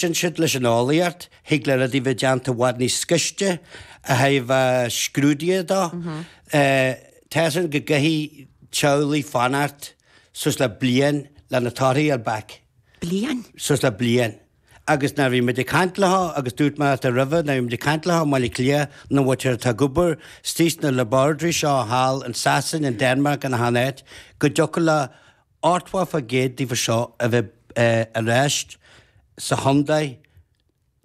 D'fhan siad leis an eolaíocht, thig le rudaí bheith déanta i bhfad níos gaiste a thaobh na scrúduithe dó. Tá a fhios againn go gcaithfidh teaghlaigh fanacht suas le bliain le na torthaí a fháil back. Bliain? Suas le bliain. Agus nuair a bhí muid ag caint leo agus dúirt mé leat roimhe nuair a bhí muid ag caint leo i mBaile Átha Cliath na bhfaightear atá ag obair istigh sna laboratories seo thall in Sasain, in Denmark, in achan áit, go dtiocfadh leo Ochtó fán gcéad díobh seo a bheith ar ais sa chontae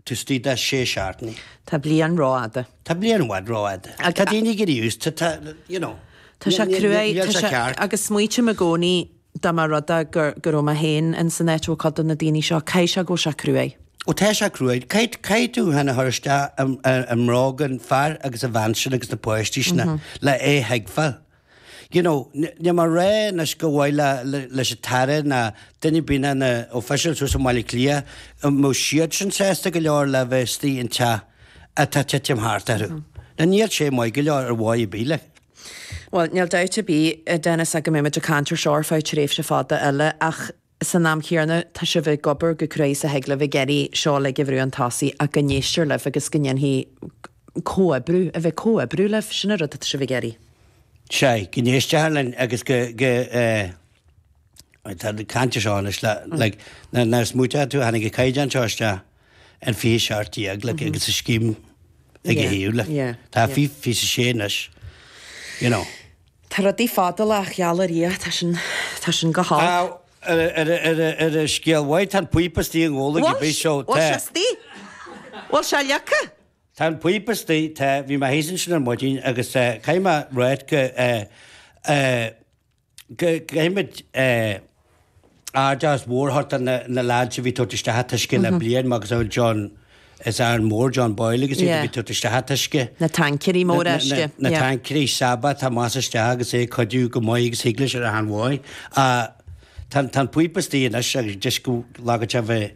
taobh istigh de sé seachtaine. Tá bliain rófhada. Tá bliain i bhfad rófhada. Tá daoine ag éirí aosta, tá, you know. Tá sé cruaidh. Níl sé ceart. Agus smaoitím i gcónaí dá mba rud é go raibh mé féin ins an áit a bhfuil cuid de na daoine seo, caithfidh sé go bhfuil sé cruaidh. Ó tá sé cruaidh. Caithfidh tú thú féin a chur isteach i mbróga an fear agus an bhean sin agus na páistí sin le é a thuigbheáil. You know, níl mé ag rá anois go mba mhaith leis an tAire ná duine ar bith de na officials thuas i mBaile Cliath an mbeadh siadsan sásta go leor le bheith istigh in teach atá ag titim thart orthu. Now níl sé maith go leor ar dhóigh ar bith like. Bhuel, níl dabht ar bith, a Denis, ach go mbeimid ag caint ar seo ar feadh tréimhse fada eile ach san am chéanna, tá sibh ag obair chomh cruaidh is a thig libh ag iarraidh seo uilig a bhrú chun tosaigh ach go n-éistear libh agus go ndéanfaí comhoibriú, a bheith comhoibriú libh, sin an rud atá sibh ag iarraidh. Sea, go n-éistear linn agus go, go eh, tá muid ag caint ar seo anois le, like, nuair, nuair a smaoitíonn tú, tháinig an caighdeán seo isteach in fiche a seacht déag, like, agus an scéim ag a thaobh, like, tá fiche a sé anois, you know. Tá rudaí fadálach ar Dhia, tá sin, tá sin go Á, holc. ar, ar, ar, ar an scéal mhaith, tá an píopa istigh i nGabhla Bhfuil, bhí seo, bhfuil tá. sé istigh? Bhfuil sé leagtha? Tá an píopa istigh, tá, bhí mé thíos ansin ar maidin agus eh, caithfidh mé a ráit go eh, eh, go, go, caithfimid eh, aitheantas mór a thabhairt do na leaids a bhí ag tabhairt isteach an t-uisce le bliain agus a bhfuil John, as Árainn Mhór, John Boyle agus iad a bhí ag tabhairt isteach an t-uisce, na taincéirí móra uisce. na taincéirí Sabba atá amach is isteach agus é ag cuidiú chomh maith agus thig leis ar achan dóigh. Tá an píopa istigh anois agus deis go leagadh sé bheith.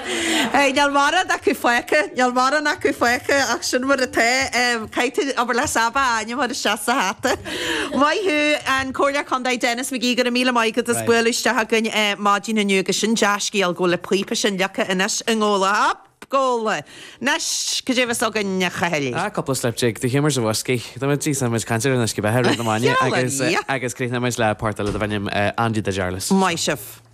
Níl mórán acu fágtha, níl mórán acu fágtha ach sin mar atá. Caithfidh tú, abair le Sabba a ainm a chur isteach sa hata. Maith thú, an Comhairleoir Contae Denis McGee, go raibh míle maith agat as bualadh isteach againn maidin inniu agus sin dea-scéal go bhfuil an píopa sin leagtha anois i nGabhla. Hup Gabhla! Anois, cad é a bheas againn, a Chathail? Á, cúpla slip jig, The Humours of Whiskey, tá muid ag seinm muid ag caint ar an uisce beatha i rith na maidine agus agus críochnóidh muid le port eile darb ainm Andy de Jarlis. Maith sibh!